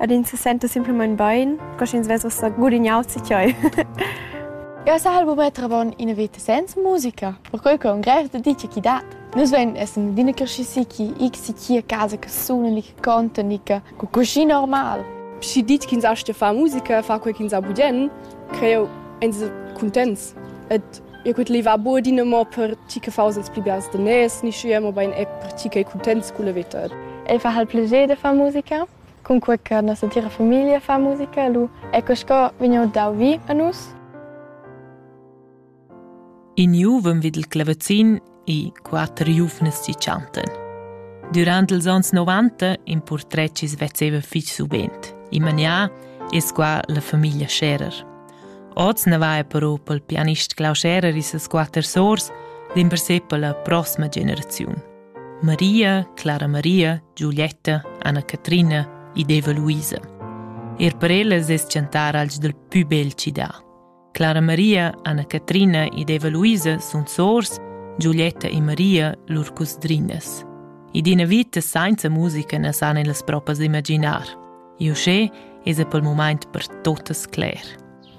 Ed ins se senta simplamain bain, co sch'ins vess ussa gudignau tgei. Eu sahal bu metter avon ina veta senza musica, perquei che un grev da dice chi dat. Nus vein essen adina cresciusi chi ich si chi a casa che suna ni che conta ni che cu cuschi normal. Schi dit ch'ins astga far musica, far quei ch'ins ha budien, creo ins cuntents. Et Eu cud levà be adina mo per tgi che faus ils pli biars daners, ni schia, mobein er per tgi ch'ei cuntents culla veta. El fa hal plager de far musica, cunque che nossa tira famiglia fa musica, lu ecco sco vegniu dau vi a nus. In juvem vid il clavazin e quatter giuvnas si chantan. Durant ils onns 90 in portret chi svezzeva fich subent. In manià es qua la famiglia Scherer. Oz ne va però pel pianist Klaus Scherer e ses quatter sors dimpersè per la prossima generaziun. Maria, Clara Maria, Giulietta, Anna Catrina ed Eva Luisa. Er per ellas es chantar als dal pü bel città. Clara Maria, Anna-Catrina ed Eva Luisa sun sors, Giulietta e Maria lur cusdrinas. Ed ina vita senza musica na san ellas propras imaginar. E uschè es pel mumaint per totas cler.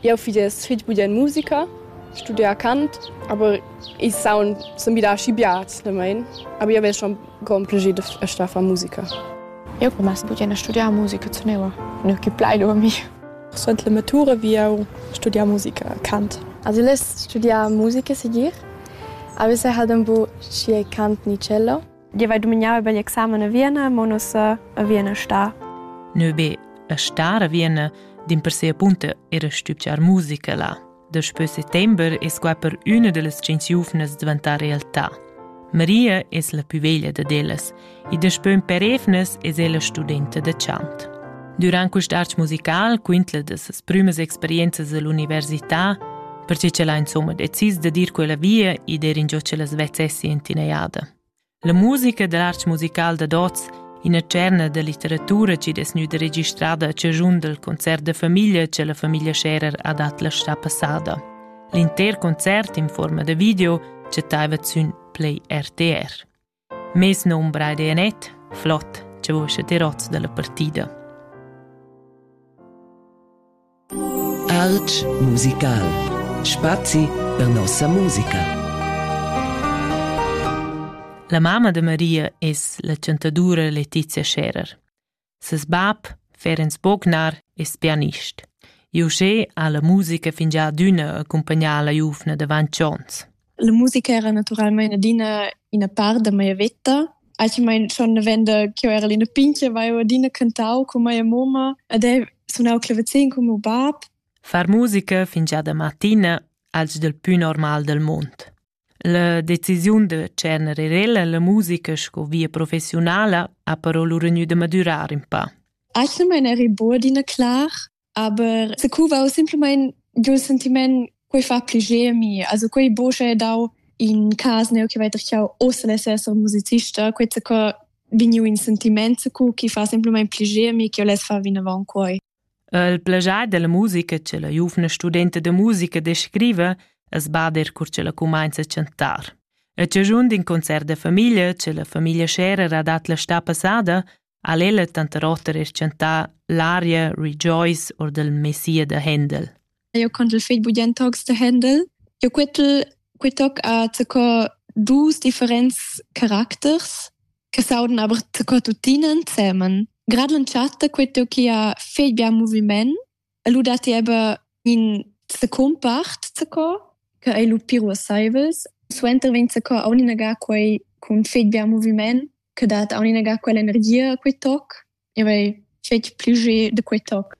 Eu fich es fich budia in musica, studia cant, aber ich saun sun wieder aschi biats da mein, aber io ves schon con piacere a sta far musica. Eu per mens budia na studiar musica zu neua, ne che plai dormi. Suenter la matura vi jau studiar musica, cant. Has vus studià musica segir? Avais ha dambo schi cant ni cello? Io vai dumignare per l'examen a Vienna, ma non so a Vienna sta. Ne be a star a Vienna, din per sia punta era stübgiar musica là. Daspö settember es qua per üna da las tschient giuvnas dvantà realtà. Maria es la pü veglia dad ellas e daspö ün per evnas es ella studenta da chant. Durant quist arch musical quintla da ses prümas experienzas all'università, perche ch'ella insomma decis da dir quella via e der ingio ch'ella svezzessi in tinaiada. La musica dad arts musical dad oz, ina tscherna da litteratura chi'd es gnüda registrada a chaschun dal concert da famiglia cha la famiglia Scherer ha dat la stà passada. L'inter concert in fuorma da video chattaivat sün Play RTR. Mes nom Braide Anet, flot, cha vos te roz da la partida. Art musical. Spazi per nossa musica. La mamma de Maria es la chantadura Letizia Scherer. Ses bab, Ferenc Bognar, es pianist. José ha la musica fingià adüna accumpagnà la giuvna davant chons. La musica era naturalmein adina ina part da mia veta. Actualmein schon avenda ch'jeu era ina pintga aveva adina cantau cun mia moma ed ei sunau clavazin cun meu bab. Far musica fingiada mattina als dal pü normal del mund. La decisiun de tschernere rella la musica sco via professionala ha però lura gnü da madurar un pa. Actualmein eri buc adina clar, Aber secuva simpelmente giu sentiment quei fa pliger mi also quei bosche dau in cas neu che weiter chau osel esser musicista quei se co vegniu in sentiment cu chi fa simpelmente pliger mi che les fa vinavon quei Il plagiar della musica che la giuvna studenta de musica descrive es bader cur che la cumainza a chantar. E ciagiund in concert de famiglia, che la famiglia Scherer ha dat la sta passada, ha l'ella tanter oter reschantà l'aria Rejoice or del Messia de Händel. Eu contel fegl budient tocs de Händel. Eu quetel quitoc a tco dus differents caracters che sauden aber tco tuttinen zemen. Grad l'entschatta quetel chi ha fegl bia moviment E lu dat ti aber in secumpart zaco, che ei lu pir uasseivels. Suenter vegn zaco auninaga quei cun fetg bia moviment, che dat auninaga quell'energia a quei toc. E vei fetg pli ge de quei toc.